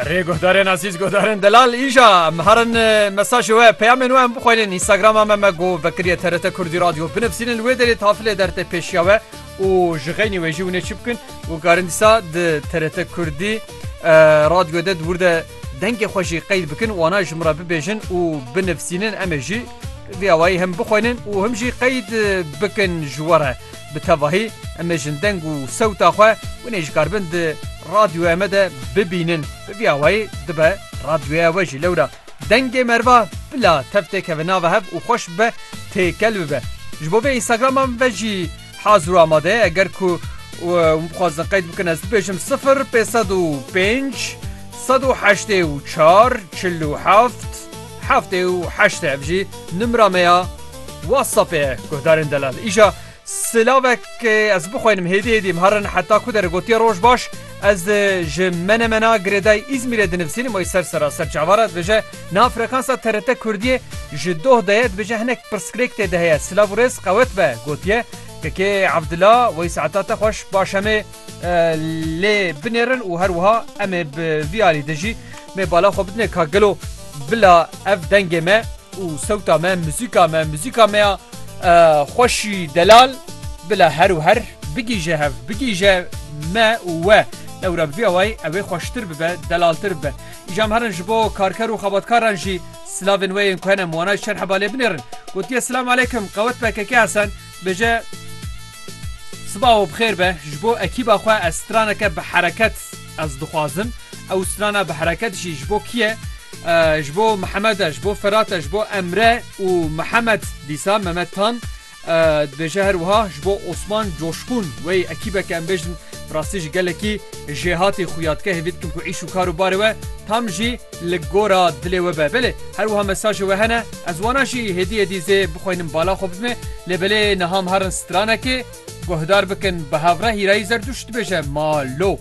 Rê guhdarên azîz guhdarên delal îja em herin mesajê we peyamên we em bixwelin Instagrama me me got vekiriye TRT Kurdî Radyo binivsînin wê derê tafilê dertê pêşiya we û ji xeynî wê jî hûnê çi bikin û karin dîsa di TRT Kurdî radyo de dûr de dengê xwe jî qeyd bikin wana ji min re bibêjin û binivsînin em ê jî vî awayî him bixwelin û him jî qeyd bikin ji we re. Bi tevahî em ê jin deng û sewta xwe winê ji kar bin di radyoya me de bibînin. Bi vî awayî dibe radyoya we jî lewra dengê merva bila tev tê keve nava hev û xweş bibe têkel bibe. Ji bo vê Instagrama min ve jî hazir û amade ye eger ku wan bixwazin qeyd bikin ez bibêjim sifir pêsed û pênc sed û heştê û çar çil û heft. Heftê û heştê ev jî nimra me ya WhatsAppê ye guhdarên delal. Îja silavek ez bixwînim hêdî hêdî em herin heta ku dere gotiye roj baş ez ji menemena girêdayê Îzmîrê dinivîsînim wê ser sera ser çavar e dibêje niha frekansa TRT Kurdiyê ji doh de ye dibêje hinek pirsgirêk tê de heye silav û rêz qewet be gotiye Kekê Evdila wey saeta te xweş baş em ê lê binêrin û her wiha em ê bi vî alî de jî me bala xwe bidine ka gelo bila ev dengê me û sewta me muzîka me muzîka me ya xweşî delal bila her û her bigîje hev bigîje me û we lewra bi vî awayî ew ê xweştir bibe delaltir bibe îjam herin ji bo karker û xebatkaran jî silavên wê yên ku hene miwanaj çend hebalê binêrin gotiye silam aleykum qewet pkk Hesen Bêje Siba we bixêr be ji bo ekîba xwe ez straneke bi hereket ez dixwazim. Ew strana bi hereket jî ji bo kî ye? Ji bo Mihemed e, ji bo Ferat e, ji bo Emre û Mihemed dîsa Memed Tan dibêje her wiha ji bo Osman Coşqûn wey ekîbeke em bêjin bi rastî ji gelekî jêhatî xuya dike hêvî dikim ku îş û kar û barê we tam jî Li gora dilê we be. Belê her wiha mesajê we hene. Ez wana jî hêdî hêdî zê bixweynim bala xwe bidime. Lê belê niha me herin stranekê. Guhdar bikin bi hevreh Hîrayî Zerdûşt dibêje ma lo.